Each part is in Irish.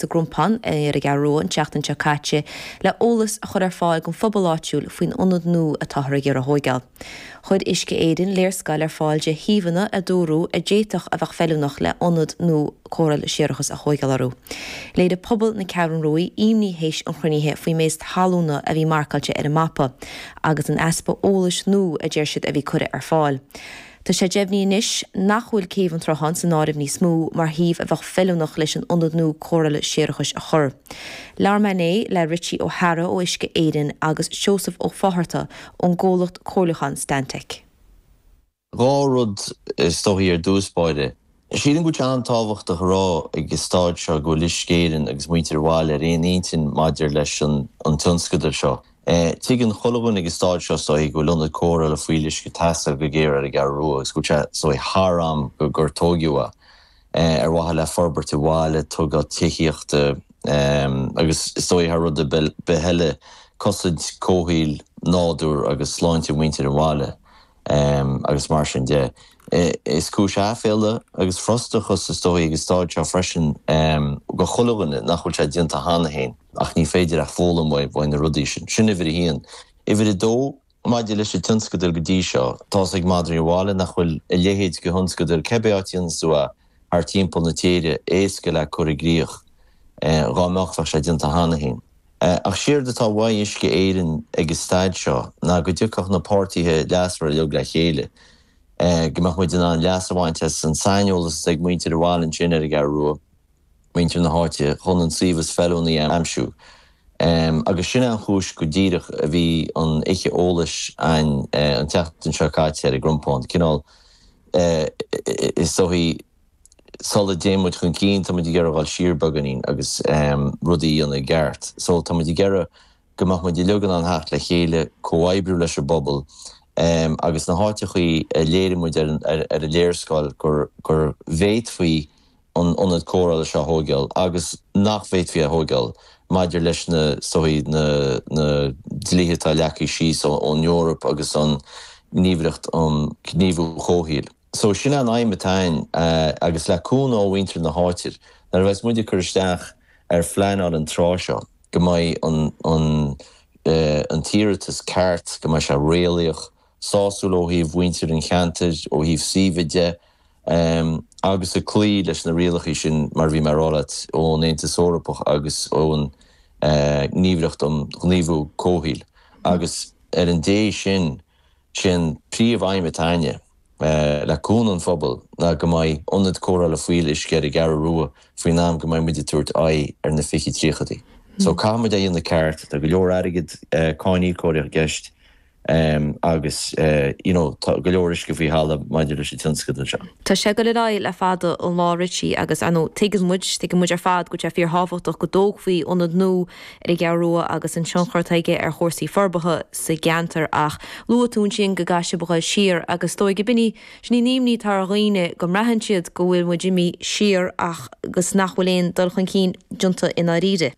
sa gCrompán ar an gCeathrú Rua an tseachtain seo caite le eolas a chur ar fáil don phobal áitiúil faoin ionad nua atáthar ag iarraidh a thóigeáil. Chuir Uisce Éireann léarscáil ar fáil de shuíomhanna a dúradh a d'fhéadfadh a bheith feiliúnach le ionad nua cóireála séarachais a thóigeáil orthu. Léirigh pobal na Ceathrún Ruaidh imní théis an chruinnithe faoin méid talúna a bhí marcáilte ar an mapa agus an easpa eolais nua a deir siad a bhí curtha ar fáil. Tá sé deimhnithe anois nach bhfuil Céibh an tSrutháin san áireamh níos mó mar shuíomh a bheadh feiliúnach leis an ionad nua cóireála séarachais a chur. Labhair mé inné le Richie Ó hEadhra ó Uisce Éireann agus Seosamh Ó Fátharta ón gcomhlacht comhairliúcháin Stantec. Dhá rud is dóiche ar dtús báire, Sílim go bhfuil sé an-tábhachtach a rá ag an stáid seo go bhfuil Uisce Éireann agus muintir an bhaile ar aon intinn maidir leis an tionscadal seo. Tuigeann chuile dhuine ag an stáid seo is dóigh go bhfuil ionad cóireála fuíolluisce ag teastáil go géar ar an gCeathrú Rua agus go bhfuil sé is dóigh thar am go gur tóigeadh é ar mhaithe le forbairt an bhaile, tógáil tithíochta agus is dóigh thar rud ar bith eile cosaint comhshaoil, nádúr agus sláinte mhuintir an bhaile. Em, agus mar sin de. Is cúis aiféala agus frustrachais, is dóigh, ag an stáid seo freisin, em, do chuile dhuine nach bhfuil sé déanta cheana féin, ach ní féidir ach foghlaim uaidh, uaidh na rudaí sin. Sin uimhir a haon. Uimhir a dó, maidir leis an tionscadal go dtí seo, tá's ag madraí an bhaile nach bhfuil a leithéid de thionscadal, cibé áit ina bhfuil tú a, thar timpeall na tíre, éasca le cur i gcrích, dhá mbeadh, bheadh sé déanta cheana féin. Ach séard atá uaidh Uisce Éireann ag an stáid seo ná go dtiocfadh na páirtithe leasmhara uilig le chéile, go mbeadh muid in ann leas a bhaint as an saineolas atá ag muintir an bhaile ansin ar an gCeathrú Rua, muintir na háite chun an suíomh is feiliúnaí a aimsiú agus sin é an chúis go díreach a bhí an oíche eolais a'ainn an tseachtain seo caite sa gCrompán, cineál is dóiche sula dtéann muid chun cinn tá muid ag iarraidh a dhul siar beagáinín agus rudaí a dhéanamh i gceart so tá muid ag iarraidh go mbeadh muid uilig in ann theacht le chéile, comhoibriú leis an bpobal agus na háiteachaí a léirigh muid ar an léarscáil go bhféadfaí an ionad cóireála seo a thóigeáil agus nach bhféadfaí a thóigeáil maidir leis na is dóiche, na na dlíthe atá leagtha síos ón Eoraip agus an Gníomhaireacht um Ghníomhú Comhshaoil. So sin é an aidhm atá a'inn agus le cúnamh ó mhuintir na háite nuair a bheas muid ag cur isteach ar phleanáil an tráth seo go mbeidh an an an t-iarratas ceart, go mbeidh sé réalaíoch, sásúil ó thaobh mhuintir an cheantair, ó thaobh suímhe de, agus ag cloí leis na rialacha sin, mar a bhí mé ag rá leat, ón Aontas Eorpach agus ón nGníomhaireacht um Chaomhnú Comhshaoil. Agus ina dhiaidh sin, sé an príomhaidhm atá 'ainne, le cúnamh an phobail, ná go mbeidh ionad cóireála fuíolluisce ar an gCeathrú Rua faoin am go mbeidh muid ag tabhairt aghaidh ar na fiche tríochaidí. So, caithfidh muid é dhéanamh ceart, tá go leor airgead cáiníocóirí i gceist, Agus you know tá go leor uisce faoi thalamh maidir leis an tionscadal seo. Tá sé ag dul ar aghaidh le fada an lá Richie agus I know tuigeann muid, tuigeann muid ar fad go bhfuil sé fíorthábhachtach go dtógfaí ionad nua ar an gCeathrú Rua agus an tionchar atá aige ar chúrsaí forbartha sa gceantar ach luaigh tú ansin go gcaithfidh sibh a dhul siar agus is dóigh gob in an imní atá ar dhaoine go mbraitheann siad go bhfuil muid imithe siar ach agus nach bhfuil aon dul chun cinn déanta i ndáiríre.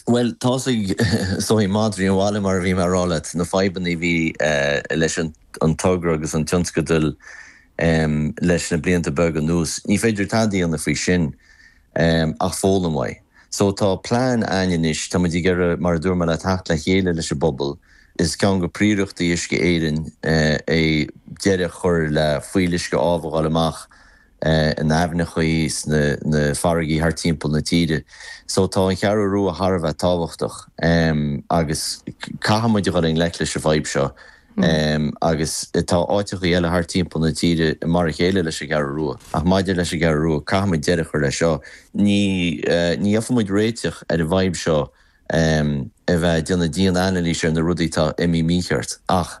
Bhuel, tá a fhios a'd maidir leis an mbaile, mar a bhí mé a' rá leat, na fadhbanna a bhí leis an togra agus an tionscadal leis na blianta beaga anuas. Ní féidir tada a dhéanamh faoi sin ach foghlaim uaidh. So tá plean 'ainn anois, tá muid ag iarraidh, mar a dúirt mé leat, theacht le chéile leis an bpobal, is ceann de phríorachtaí Uisce Éireann é deireadh a chur le fuíolluisce amh a dháileadh amach, in aibhneachaí is sna farraigí thart timpeall na tíre. So tá an Cheathrú Rua thar a bheith tábhachtach agus caithfidh muid a dhul i ngleic leis an bhfadhb seo agus tá áiteachaí eile thart timpeall na tíre mar a chéile leis an gCeathrú Rua ach maidir leis an gCeathrú Rua caithfidh muid deireadh a chur leis seo. Ní bhfaighidh muid réiteach ar an bhfadhb seo a bheith ag déanamh dian-anailís ar na rudaí atá imithe mícheart ach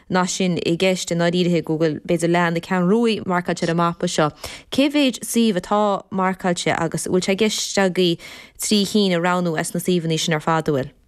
Nach sin i gceist i ndáiríre go bhfuil, b'fhéidir, leath na Ceathrún Rua marcáilte ar an mapa seo? Cé mhéid suíomh atá marcáilte agus bhfuil sé i gceist agaibh trí cinn a roghnú as na suíomhanna sin ar fad a bhfuil?